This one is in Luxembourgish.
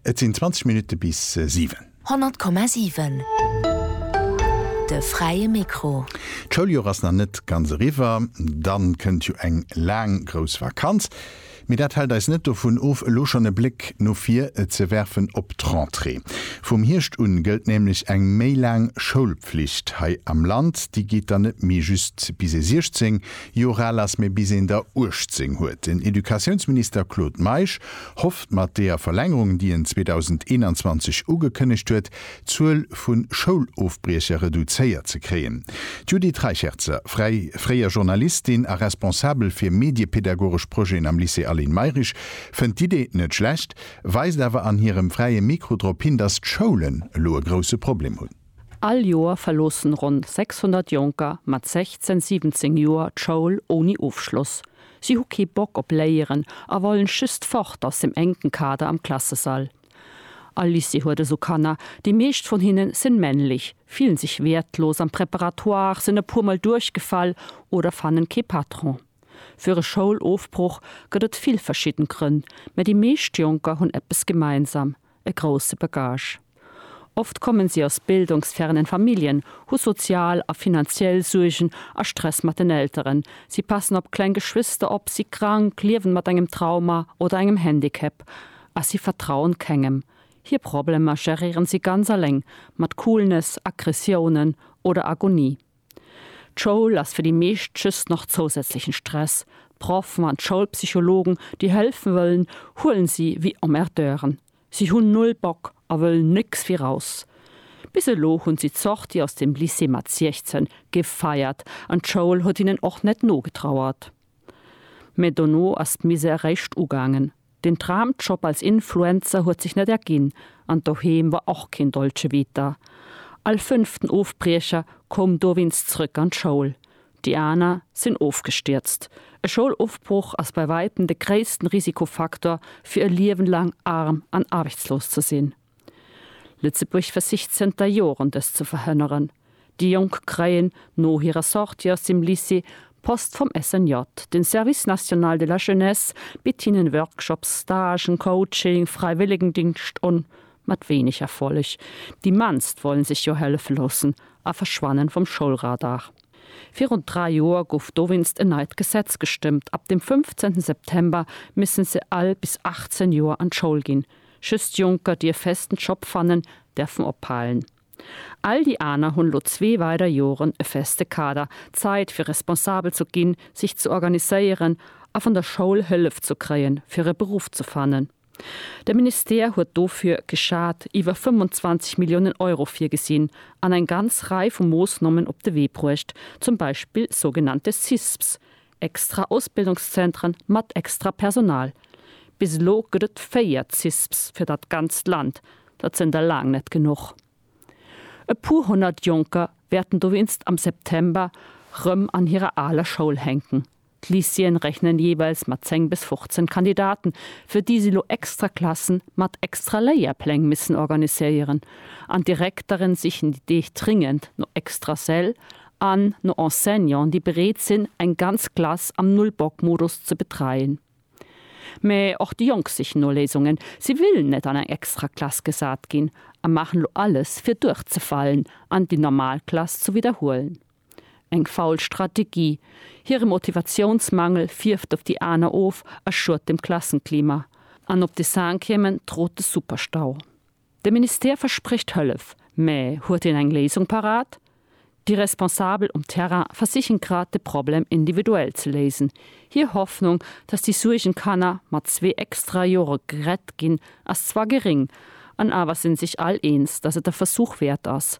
Et sinn 20 Minutte bis 7. 100,7 De fräie Mikro. D'Schouljoer ass nach net ganz eriwwer. Dann kënnt jo eng laang grouss Vakanz. Mee dat hält eis net dovun of, elo schonn e Bléck no vir ze werfen op d'Rentrée. Vum Hierscht un gëllt nämlech eng méi laang Schoulpflicht hei am Land. Déi geet dann net méi just bis ee 16, Jora lass, mee bis een der 18 huet. Den Educatiounsminister Claude Meisch hofft mat deeër Verlängerung, déi en 2021 ugekënnegt huet, d'Zuel vu Schoulofbriecher reduzéiert ze kréien. D'Judith Reicherzer, fräi, fréier Journalistin a Responsabel fir mediepedagogesch Projeten am Lycée Aline Mayrisch, fënnt d'Idee net schlecht, weist awer an hirem Fräie Mikro drop hin, datt d'Schoulen elo e grousse Problem hunn. All Joer verloossen ronn 600 Jonker mat 16, 17 Joer d'Schoul ouni Ofschloss. Si hu kee Bock op Léieren a wollen just fort aus dem enken Kader am Klassesall. All Lycée huet esou Kanner. Déi meescht vun hinne sen männlich, fillen sech wertlos am Préparatoire, sen e puer mol duerchgefall oder fannen kee Patron. Fir e Schoulofbruch gëtt et vill verschidden Grënn, mä déi meescht Jonker hunn eppes gemeinsam, e grousse Bagage. Oft kommen si aus bildungsfernen Familljen, hu sozial a finanziell Suergen a Stress mat den Elteren, si passen op kleng Geschwister op, si krank, liewen mat engem Trauma oder engem Handicap a si vertrauen kengem. Hir Problemer geréieren si ganz aleng, mat Coolness, Aggressiounen oder Agonie. D'Schoul ass fir déi meescht just nach zousätzlechen Stress. D'Proffen an d'Schoulpsychologen, déi hëlfen wëllen, huelen si wéi Emmerdeuren. Si hunn null Bock a wëllen nécks wéi raus. Bis elo hunn si d'Sortie aus dem Lycée mat 16 gefeiert an d'Schoul huet hinnen och net nogetrauert. Mä dono ass d'Misère réischt ugaangen. Den Traumjob als Influencer huet sech net erginn an doheem war och keen Dolce Vita. All fënnften Ofbriecher koum dowéinst zrëck an d'Schoul, déi aner sinn ofgestierzt. E Schoulofbroch ass bei wäitem de gréissten Risikofaktor fir e Liewen laang arm an aarbechtslos ze sinn. Lëtzebuerg versicht zënter Joren dëst ze verhënneren. Déi Jonk kréien no hirer Sortie aus dem Lycée Post vum SNJ. Den Service National de la Jeunesse bitt hinnen Workshops, Stagen, Coaching, Fräiwëllegendingscht un, mat wéineg Erfolleg. Déi mannst wollen sech jo hëllefe loossen a verschwannen vum Schoulradar. Virun 3 Joer gouf dowéinst en neit Gesetz gestëmmt, ab dem 15 September missen se all bis 18 Joer an d'Schoul ginn. Just Jonker dierf festen Job fannen, därfen ophalen. All déi aner hunn lo zwee weider Joren e feste Kader, Zait fir responsabel ze ginn, sech ze organiséieren a van der Schoul Hëllef ze kréien fir e Beruff ze fannen. De Ministère huet dofir, geschat, iwwer 25 Milliounen Euro virgesinn an eng ganz Rei vu Moossnommen op de Wee bruecht, zum Beispill sougenannte CISPs, Extra Ausbildungszentren mat extra Personal, bis elo gëtt et 4 CISPs fir dat ganzt Land, dat sënn der laang net genuch. E puer honnert Jonker wäerten dowéinst am September rëm an hirer aler Schoul hänken. D'Lycéeën rechnen jeeweils mat 10 bis 15 Kandidaten, fir déi si elo extra Klassen mat extra Léierpläng missen organiséieren, an d'Direktere sichen déi Deeg dringend no extra Säll an no Enseignanten, déi bereet sinn, eng ganz Klass am Null-Bock-Modus ze betreien. Mä och déi Jonk sichen no Léisungen. Si wëllen net an eng extra Klass gesat ginn a maachen elo alles, fir duerchzefalen an déi normal Klass ze widderhuelen. Eng faul Strategie. Hire Motivatiounsmangel fierft op déi aner of a schuet dem Klassenklima. An op de Cinquièmen trot de Superstau. De Ministère versprécht Hëllef, mä huet en eng Léisung parat? Déi Responsabel um Terrain versichen grad de Problem individuell ze léisen. Hir Hoffnung, datt déi Suergenkanner mat zwee extra Jore gerett ginn, ass zwar geréng, an awer sinn sech all eens, datt et e Versuch wäert ass,